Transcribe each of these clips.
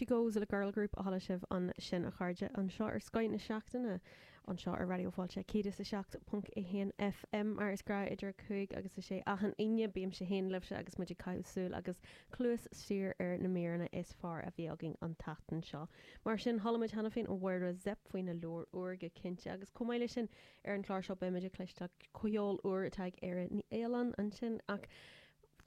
She goes le girl group a chuala sibh ansin a chairde anseo ar Scoith na Seachtaine anseo ar Raidió Fáilte 107.1 FM mar is gnách idir 5 agus a 6 achan Aoine bímse fhéin libhse agus muid ag caitheamh súil agus cluas siar ar na míreanna is fearr a bhí againn an tseachtain seo mar sin chuala muid cheana féin ó Mháire Zepf faoina leabhar úr go cinnte agus chomh maith le sin ar an chlár seo beimid ag cloisteáil ceol úr atá ag Éire Ní Fhaoláin ansin ach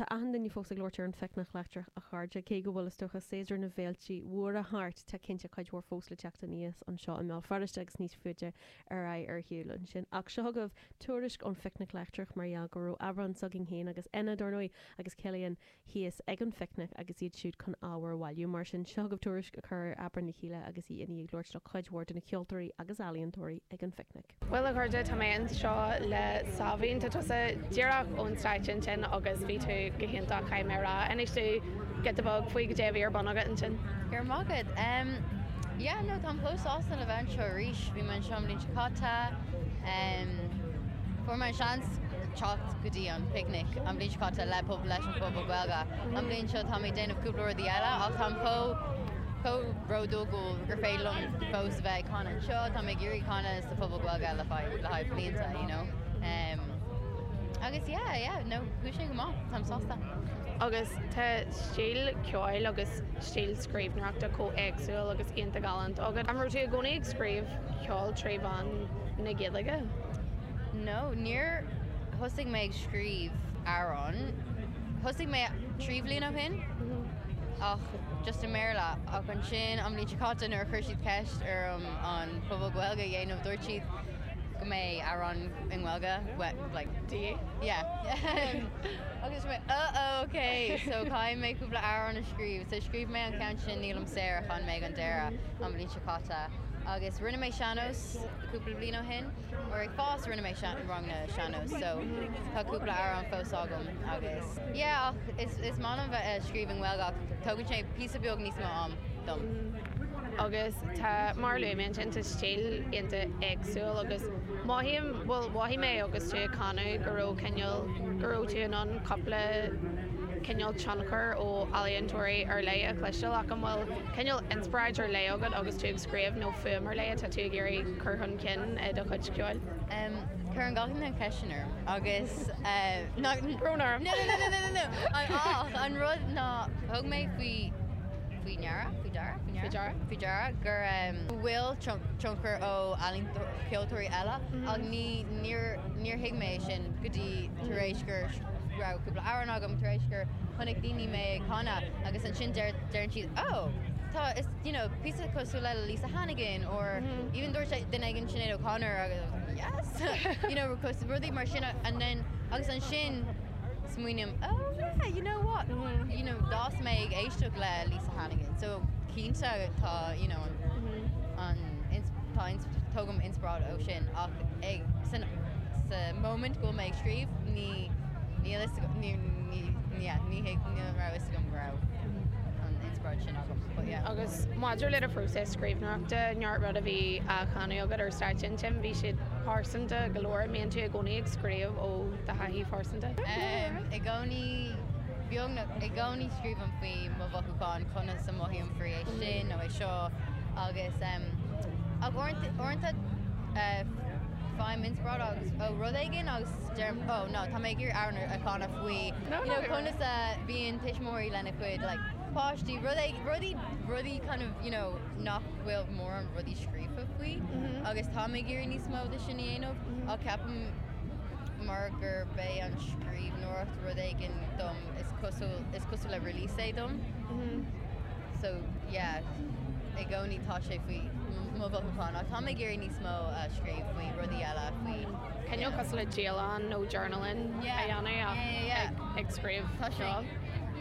Tá achan duine fós ag labhairt ar an phicnic leictreach a chairde, cé go bhfuil, is dócha, séasúr na bhféiltí móra thart, tá cinnte cuid mhór fós le teacht aníos anseo i mBéal Feirste agus níos faide ar aghaidh ar shiúl ansin. Ach seo agaibh tuairisc ón phicnic leictreach mar gheall go raibh Aibreán s'againn féin agus Éanna, dar ndóigh, agus Cillian thíos ag an phicnic agus iad siúd chun ábhar a bhailiú. Mar sin, seo agaibh tuairisc a chuir Aibreán le chéile agus í ag labhairt le cuid mhór de na ceoltóirí agus ealaíontóirí ag an phicnic. Bhuel, a chairde, tá mé anseo le Sáimhín. Tá tusa díreach ón stáitse ansin agus bhí tú go hiontach, caithfidh mé a rá. Inis dúinn giota beag faoi goidé a bhí ar bun agat ansin. Go raibh maith agat. Em, yeah, no, táim chomh sásta le bheith anseo arís. Bhí mé anseo an bhliain seo caite. Em, fuair mé an seans teacht go dtí an Picnic an bhliain seo caite le Puball, leis an Phuball Gaeilge. An bhliain seo táim ag déanamh cúpla rudaí eile ach táim chomh. chomh bródúil gur féidir liom fós a bheith ag canadh anseo, táim ag iarraidh canadh sa Phuball Gaeilge le fada, le haghaidh blianta, you know. Em, agus yeah, yeah, no, chuaigh sé go maith, táim sásta. Agus tá stíl ceoil agus stíl scríbhneoireachta chomh éagsúil agus iontach galánta agat. An raibh tú i gcónaí ag scríobh ceoil trí mheán na Gaeilge? No, níor thosaigh mé ag scríobh amhrán, thosaigh mé trí bhliain ó shin, ach. just i mBéarla, ach ansin an bhliain seo caite nuair a chuir siad ceist orm an Puball Gaeilge a dhéanamh dúirt siad go mbeidh amhrán i nGaeilge agat yeah? yeah agus bhí mé oh oh ok so caithfidh mé cúpla amhrán a scríobh so scríobh mé an ceann sin nílim saor a chan mé ag an deireadh an bhliain seo caite agus rinne mé sean-nós cúpla bliain ó shin uair ag fás rinne mé sean- ranganna sean-nós so tá cúpla amhrán fós agam agus Yeah, ach is is maith liom bheith ag scríobh i nGaeilge ach tógann sé píosa beag níos mó am dom. Agus tá, mar a luaigh mé ansin, tá stíl iontach éagsúil agus mothaím, bhuel, mhothaigh mé agus tú ag canadh go raibh cineál, go raibh tú in ann cúpla cineál tionchar ó ealaíontóirí ar leith a chloisteáil ach an bhfuil cineál inspioráid ar leith agat agus tú ag scríobh nó fuaim ar leith atá tú ag iarraidh cur chun cinn i do chuid ceoil? Cuireann gach duine an cheistin orm agus tá brón orm. Ach an rud ná thug mé faoi ndeara, faoi deara? faoi ndeara? faoi deara go bhfuil tionchar ó ealaíontóirí, ceoltóirí eile ach ní, níor, níor thuig mé é sin go dtí tar éis gur raibh cúpla amhrán agam, tar éis gur chonaic daoine mé ag canadh agus ansin deir, deireann siad 'Ó, tá, is, you know, píosa cosúil le Lisa Hannigan or even dúirt duine éigin Sinéad O'Connor agus yes! you know, cos rudaí mar sin and then agus ansin smaoiním oh yeah, you know what, you know d'fhás mé ag éisteacht le Lisa Hannigan so cinnte tá you know an ins tá ins tógaim inspioráid ó sin ach ag san sa moment go bhfuil mé ag scríobh ní níl a fhios agam ní ní yeah ní thig ní raibh a fhios agam go raibh an inspioráid sin agam but yeah. Agus maidir le do phróiseas. scríbhneoireachta, neart rud a bhí á chanadh agat ar stáitse an Tent, bhí siad pearsanta go leor, an mbíonn tú i gcónaí ag scríobh ó do thaithí phearsanta? Em, i gcónaí, beagnach i gcónaí scríobhaim faoi mo mhothúcháin, conas a mhothaím faoi é sin nó é seo agus em, ach uaireanta, uaireanta eh faighim inspioráid agus, ó rud éigin agus deirim oh no, tá mé ag iarraidh amhrán a chanadh faoi, you know, conas a bhíonn tuismitheoirí lena gcuid like, páistí, rud éigin, rudaí, rudaí kind of, you know, nach bhfuil mórán rudaí scríofa faoi agus táim ag iarraidh níos mó de sin a dhéanamh ach ceapaim mar gur b'é an scríbhneoireacht rud éigin dom is cosúil, is cosúil le release é dom so yeah i gcónaí tá sé faoi mo mhothúcháin ach táim ag iarraidh níos mó a scríobh faoi rudaí eile faoi Cineál cosúil le dialann nó journaling a dhéanamh ach ag scríobh. Tá sé.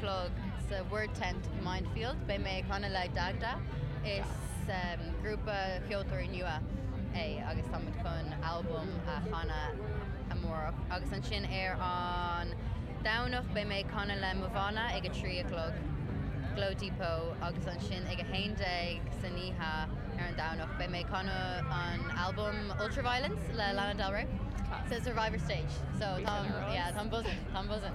chlog sa Word Tent i Mindfield. Beidh mé ag canadh le Dagda. Is grúpa ceoltóirí nua é agus táimid chun albam a chanadh amárach. Agus ansin ar an Domhnach beidh mé ag canadh le mo bhanna ag a trí a chlog, Glow Depot, agus ansin ag a haon déag san oíche ar an Domhnach beidh mé ag canadh an albam Ultraviolence le Lana Del Rey. sa Survivor stage so táim, yeah, táim buzzing, táim buzzing.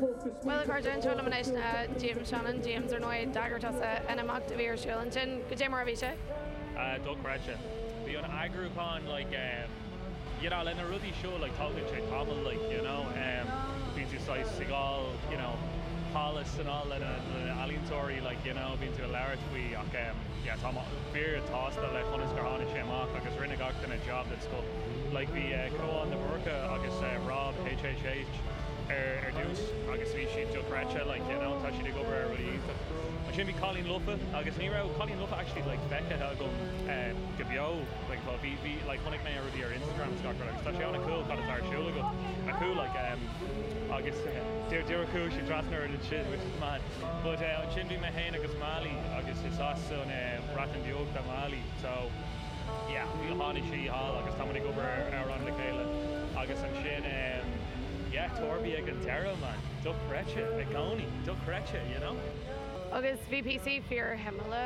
Bhuel, a chairde, anseo liom anois ná James Shannon, James, ar ndóigh, d'eagraigh tusa an imeacht a bhí ar siúl ansin. Cad é mar a bhí sé? Ah, dochreidte. Bhí an eagrúchán, like, em, you know, le na rudaí seo, like, tógann sé tamall, like, you know, em, bíonn tú saghas ag fháil, you know, thall is anall le na, le na ealaíontóirí, like, you know, bíonn tú ag labhairt faoi ach, em, yeah, tá mé fíor shásta le conas gur tháinig sé amach agus rinne gach duine jab den scoth. Like, bhí, eh, Cóil de Búrca agus, eh, Rob HH. ar dtús agus bhí siad dochreidte like you know tá siad ag obair ar rudaí iontach ansin bhí Cailíní Lofa agus ní raibh Cailíní Lofa actually like feicthe agam eh, go beo like tá bhí bhí like chonaic mé ar rudaí ar Instagram scacar agus tá sé ana-cool cad atá ar siúl agam a cool like em, agus eh, deir deir cool siad trasna ar an sin which is mad but eh, ansin bhí mé fhéin agus Mali agus is as an eh, Bhreatain Bheag do Mali so yeah tháinig sí thall agus táimid ag obair ar amhrán le chéile agus ansin em yeah torby ag an deireadh man dochreidte i gcónaí dochreidte you know. Agus bhí píosaí fíorshuimiúla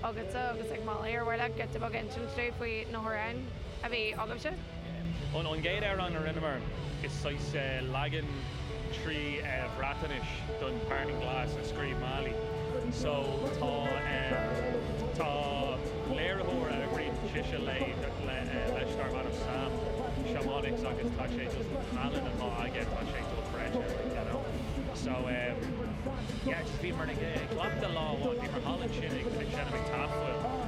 agatsa agus ag Mali ar mhaith leat giota beag insint dúinn faoi na hamhráin a bhí agaibhse? An gcéad amhrán a rinneamar is saghas leagan trí Bhreatnais don Parting Glass a scríobh Mali. So tá tá léiritheoir a rinne sise lei leis darb ainm Sam Shamoniks agus tá sé just tallann atá aige tá sé dochreidte like you know. So yeah just bhíomar ag cleachtadh lá amháin bhíomar thall ansin ag seinm ag Tafwyl.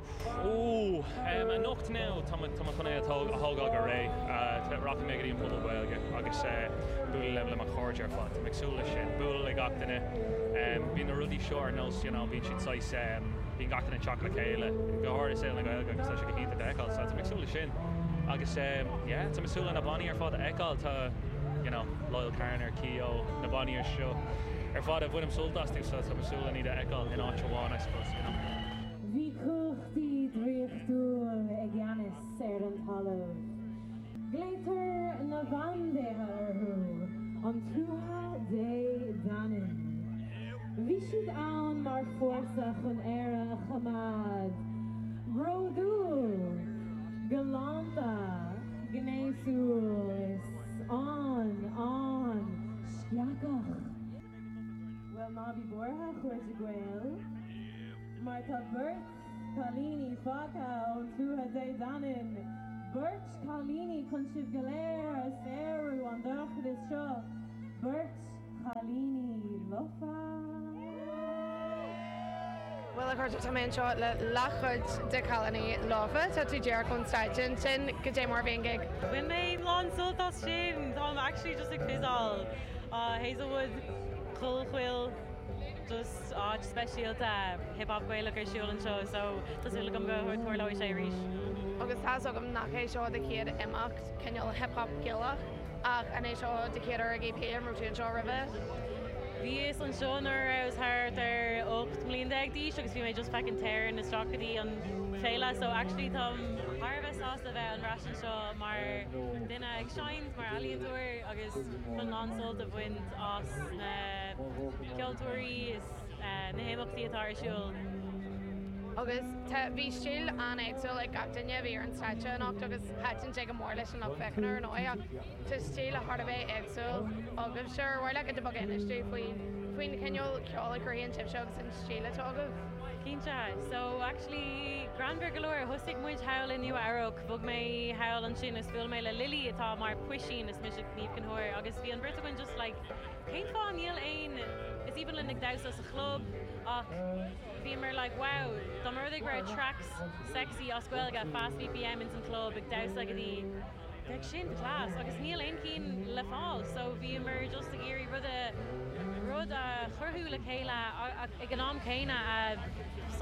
Ohh. Anocht now tá muid chun é a thógáil go réidh. Rachaidh mé go dtí an Puball Gaeilge agus bualadh le mo chairde ar fad. Tá mé ag súil leis sin. Bualadh le gach duine. Bíonn na rudaí seo ar nós, you know, bíonn siad saghas, bíonn gach duine ag teacht le chéile, go háirithe i saol na Gaeilge agus tá sé go hiontach é a fheiceáil. So tá mé ag súil leis sin. Agus yeah, tá mé ag súil le na bannaí ar fad a fheiceáil. Tá, you know, Loyle Carner, Keogh, na bannaí seo ar fad a bhainim sult astu. So tá mé ag súil le iad a fheiceáil in áit amháin, I suppose, you know. Bhí cumhachtaí draíochtúil i gceannas ar an talamh. Glaotar na bandéithe orthu an Tuatha Dé Danann. Bhí siad ann mar fórsa chun Éire a choimeád bródúil, galánta, gnéasúil is an, an, sceachach. Bhuel, ná bí buartha, a chairde Gael. mar tá beirt chailíní fágtha ón Tuatha Dé Danann, beirt chailíní chun sibh go léir a shaoradh ón dorchadas seo, beirt chailíní lofa! Bhuel, a chairde, tá mé anseo le leathchuid de chailíní lofa. Tá tú díreach ón stáitse, ansin cad é mar a bhí an gig? Bhain mé an-sult as sin! Táim actually just ag quizáil Hazelwood, Chollchoill, just. áit speisialta Hip Hop Gaelach ar siúl anseo so tá súil agam go dtarlóidh sé arís. Agus tá fhios agam nach é seo an chéad imeacht cineál Hip Hop Gaelach ach an é seo do chéad EP, an raibh tú anseo roimhe? Bhíos anseo nuair a rabhas thart ar 18 mbliana d'aois agus bhí mé just feicin sneaking isteach go dtí an féile so actually táim thar a bheith sásta a bheith ar ais anseo mar duine ag seinnt, mar ealaíontóir agus chun lán sult a bhaint. as na ceoltóirí is na himeachtaí atá ar siúl. Agus tá, bhí stíl an-éagsúil ag gach duine a bhí ar an stáitse anocht agus thaitin sé go mór leis an lucht féachana ar ndóigh ach tá stíl thar a bheith éagsúil agaibhse ar mhaith leat giota beag a insint dúinn faoin chineál ceoil a chruthaíonn sibhse agus an stíl atá agaibh? Cinnte, so actually greannmhar go leor, thosaigh muid thall i Nua-Eabhrac, bhog mé thall ansin is bhuail mé le Lily atá mar puisín, is mise Niamh Gabhar agus bhí an bheirt againn just like cén fáth níl aon Is aoibhinn linn ag damhsa sa chlub ach bhíomar like wow dá mba rud é go raibh tracks sexy as Gaeilge fast BPM ins an chlub ag damhsa go dtí bheadh sin class agus níl aon cinn le fáil so bhíomar just ag iarraidh rud a rud a chruthú le chéile ag an am céanna a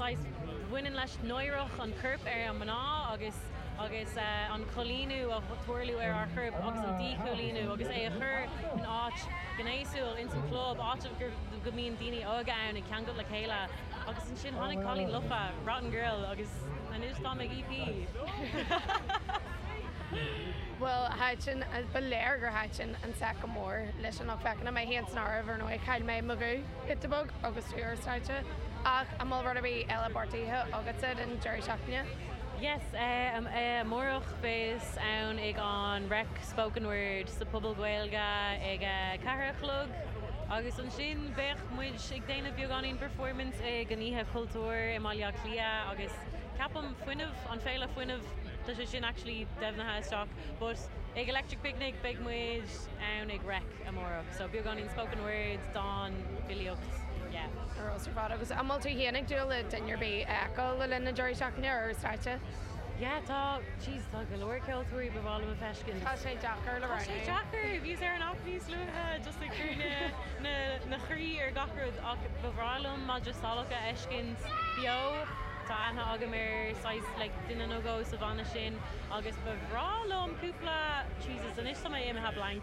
saghas bhaineann leis náire an choirp ar an mná agus. agus an coilíniú a tharla ar ár chorp agus an díchoilíniú agus é a chur in áit ghnéasúil ins an chlub, áit go mbíonn daoine óga ann ag ceangailt le chéile agus ansin tháinig cailín lofa, rotten girl, agus anois táimid ag EP! Bhuel, thaitin, ba léir gur thaitin an set go mór leis an lucht féachana, mé fhéin san áireamh, ar ndóigh, chaill mé mo ghuth giota beag agus tú ar stáitse, ach an bhfuil rud ar bith eile beartaithe agatsa don deireadh seachtaine? Yes, amárach beidh mé ann ag an reic spoken word sa Puball Gaeilge ag a ceathair a chlog agus ansin beidh muid ag déanamh beagáinín performance ag an Oíche Chultúir i mBaile Átha Cliath agus ceapaim fuinneamh, an Féile Fuinnimh, tá sé sin actually deimhnithe just yet but ag Electric Picnic beidh muid ann ag reic. amárach. So beagáinín spoken word, dán, filíocht, yeah. Ar dóigh ar fad. Agus an bhfuil tú féin ag dúil le duine ar bith a fheiceáil le linn na deireadh seachtaine ar stáitse? Yeah tá, jeez tá go leor ceoltóirí ba mhaith liom a feiscint. Tá sé deacair le rá. Tá sé deacair, bhíos ar an aip níos luaithe just ag cur an an chroí ar gach rud ach ba bhreá liom madra salach a fheiscint beo, tá aithne agam ar saghas like duine nó dhó sa bhanna sin agus ba bhreá liom cúpla, jesus anois tá mé imithe blank.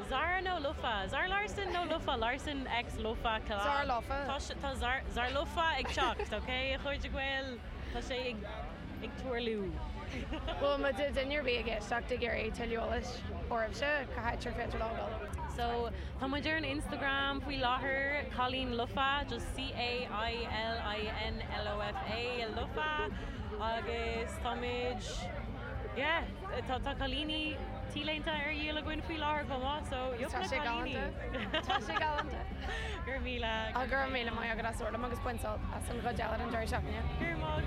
Zara nó lofa? Zara Larsson nó lofa Larsson X lofa Zara? Zara lofa. Tá sé, tá Zara, Zara lofa ag teacht, ok, a chairde Gael? Tá sé ag, ag tarlú. Bhuel, má tá duine ar bith ag éisteacht ag iarraidh tuilleadh eolais oraibhse, cá háit ar féidir leo dul? So, tá muid ar an Instagram faoi láthair, Cailín Lofa, just C-A-I-L-I-N L-O-F-A, lofa, agus táimid, Yeah, tá cailíní T-léinte ar dhíol againn faoi láthair chomh maith, so yeup na cailíní! Tá sé galánta. Tá sé galánta. Go raibh míle agat. Go raibh míle maith agat as labhairt liom agus bain sult as an gcuid eile den deireadh seachtaine. Go raibh maith agat.